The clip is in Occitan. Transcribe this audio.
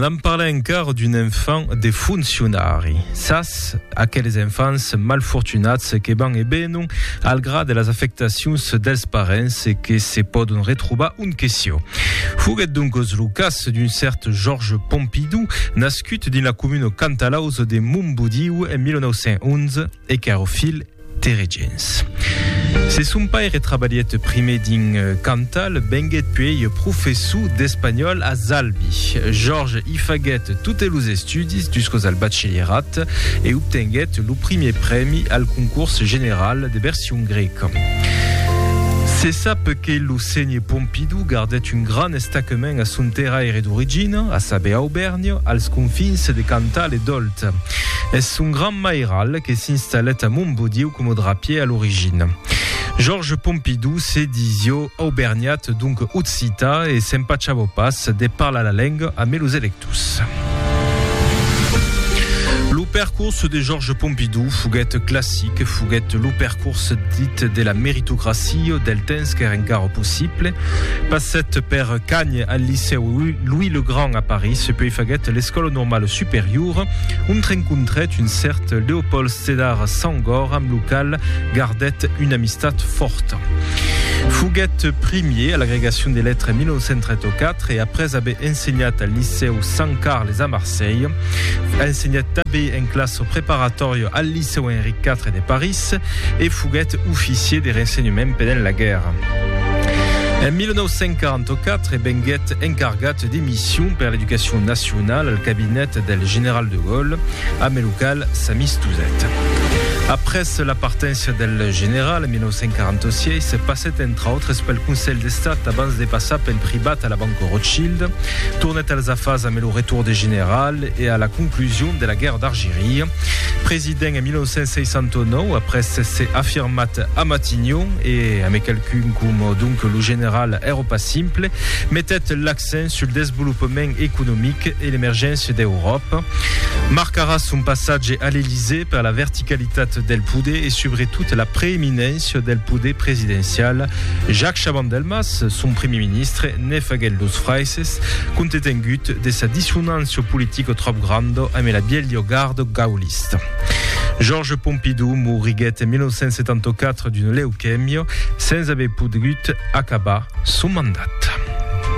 Anam parlar encara d'un enfant de funcionari. Sas, aqueles enfants malfortunats que van e benon al gra de las afectacions dels parents e que se pòdon retrobar un queció. Foguèt doncos lo cas d'un cèrt Georges Pompidou, nascut dins la comuna cantalaus de Montbodiu en 1911, e Carofil Teregents. Se son paire trabalhèt prumèr dins Cantal, venguèt puèi professor d'espanhòl a Zalbi. Jorge i faguèt totes los estudis jusqu'aus al batchelierat e obtenguèt lo prumèr prèmi al concors general de version grèca. Se sap que lo Sénher Pompidou gardèt un grand estaquement a son terraire d'origina, a saber Aubèrnia, als confins de Cantal e Dòlda. Eth. Eth son gran mairal que s'installèt a Montbodiu coma drapier a l'origina. Georges Pompidou se disió aubergnat, donc occità, e s'empachabó pas de parlar la lenga ame los electors. Lo percors de Georges Pompidou foguèt classic, foguèt lo percors. Forse dit de la meritocracia o del temps qu'ère encara possible. Passèt per Cagnes al licèu Louis le Grand a París, puèi faguèt l'Escòla Normala Superiora, ont rencontrèt un cèrt Léopold Sédar Senghor amb lo qual gardèt una amistat fòrta. Foguèt primier a l'agregacion de letras en 1934 e après aver ensenhat al licèu Sant Carles a Marselha, ensenhèt tanben en classa preparatòria al licèu Seu Enric IV de París e foguèt oficier de rensenhement pendent la guèrra. En 1944 venguèt encargat de mission per l'educacion nacionala al cabinet del general de Gaulle, amb lo qual s'amistosèt. Après la partència del general en 1946, passèt entre autres pel Conselh d'Estat abans de passar pel privat a la Banca Rothschild, tornèt als afars amb lo retour de general, e a la conclusion de la guèrra d'Argiria. President en 1969, après s'èsser afirmat a Matignon e amé qualqu'un coma donc lo general Èropa Simple, metèt l'accent sul desvolopament economic e l'emergéncia d'Euròpa. Marcarà son passatge a l'Elysée per la verticalitat del poder e subretot la preeminència del poder presidencial. Jacques Chaban-Delmas, son primier ministre, Ne faguèt los fraises, contetengut de sa dissonància politica tròp granda ame la bielha garda gaulista. Georges Pompidou moriguèt en 1974 d'una leucèmia, sens aver pogut acabar son mandat.